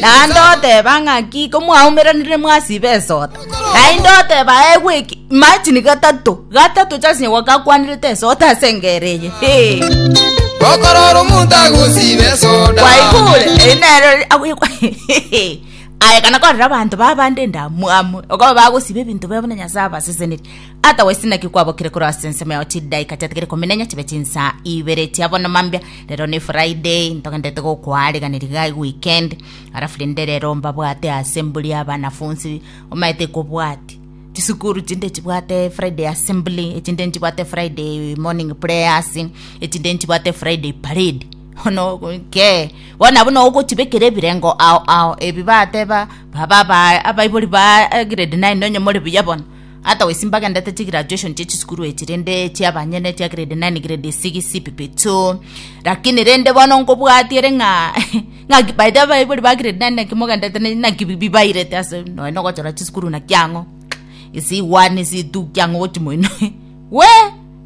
Naende oteba ng'a ki komwaumeranire mwasiba esota? Naende oteba egwe eki imagine gatato gatato chasine gwakakwanirete esota ase engere eye hey. okorora omonto agosiba esoda kwaigure eri nero agwikwa aye kana korera abanto babande ndamwamu okoba bagosiba ebinto bebe na nyasaye abaseseneri otherwise naki kwabokire korwa ase ensemo yao chidaika chiatigere kominenya chibe chinsa ibere chiabono mambia Rero ne Friday, ntogenderete gokoariganeri iga eye weekend, alafu rende rero mbabwate assembly ya abanafunsi, omanyete ekobwati chisukuru chinde chibwate Friday assembly, echinde nchibwate Friday morning prayers, echinde nchibwate Friday parade bono kee, bono abwo nogochibekera ebirengo ao ao, ebi bateba baba aba abaibori ba grade nine nonye more buya bono. Ata goisin bagendete chigraduation chia chisukuru echi rende chia banyene chia grade nine grade six pipito lakini rende bono nkobwatiere ng'a ng'a by the way abaibori ba grade nine naki mogendete ne- naki bi- bibairete ase nonya na ogochora chisukuru naki ang'o ase one ase two ki ang'o gochi moino we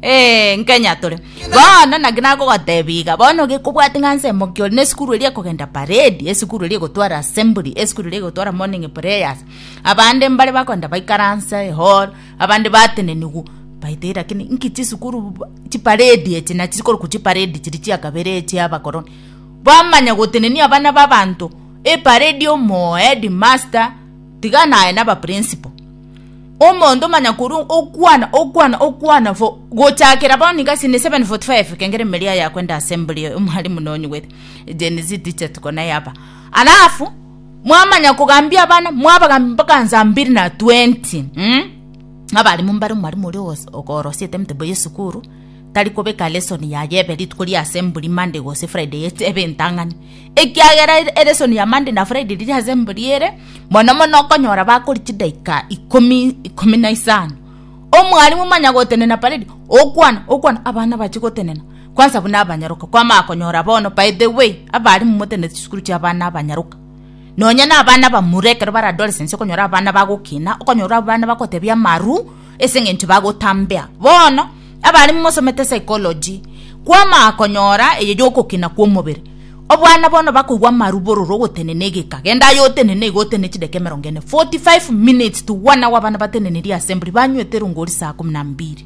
eh, nkenya tore bono naki nagogotebia iga bono gekobwati ng'a nsemo ki ore na esukuru eria ekogenda parade esukuru eria egotwara assembly esukuru eria egotwara morning prayers. Abande mbare bakoenda baikaransa ehall, abande bateneniwa baite lakini inki chisukuru bu- chiparedi echi nachi korokwa chiparedi chiri chia kabere echi abakoroni bamanya gotenenia abana ba abanto eparedi omoo headmaster tiga naye na abaprinciple omonto manya korwa okwana okwana okwana for gochakera bono iga sini seven forty five ekengera emeria yakwenda assembly omwalimu nonyigwete Gen-z teacher tuko naye apa alafu. Mwamanya kogambia abana, mwabagambia mpaka nsa mbiri na twenti. Mm? Abarimo mbare omwarimu oria ogos- okorosiete emetebo y'esukuru, tari kobeka lesoni yaye ebe rituko ria asemburi Monday gose Friday ete ebe entang'ani. Ekiagera ere- elesoni ya Monday na Friday riri asemburi ere, mono mono okonyora bakori chidaika ikomi, ikomi na isano. Omwarimu manya gotenena paredi, okwana, okwana, abana bache gotenena. Kwansa buna abanyaroka kwamanya konyora bono, by the way, abare momotenenete chisukuru chi'abana abanyaroka. Nonya nabana abamura ekero bare adolescence okonyora abana bagokina, okonyora abana bagotebia amaru ase eng'encho bagotambea. Bono, abare momosomete psychology, kwamanya konyora eye yogokina kw'omobere. Obwana bono bakoigwa amaru bororo ogotenena egeka, genda aye otenene iga otenene chideka emerongo ene, 45 minutes to one hour abana batenenirie assembly, banywete erongori saa kumi na mbiri.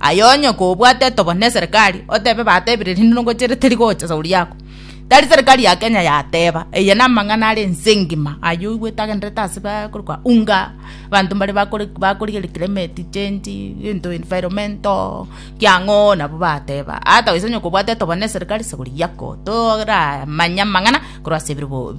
Aye onye kobwate etogoro ne serikali, otebe batebire rinde nogochire teri gocha shauri yako. Tari serikali ya Kenya yateba, eye na amang'ana are ense ngima ayio oigwete agenderete ase ba kore kwa unga, abanto mbare bakore bakorigereria climate change, egento environmental, ki ang'oo nabo bateba. Ata gose onye kobwate etogoro ne serikali shauri yako, toramanya amang'ana korwa ase ebirogo bi.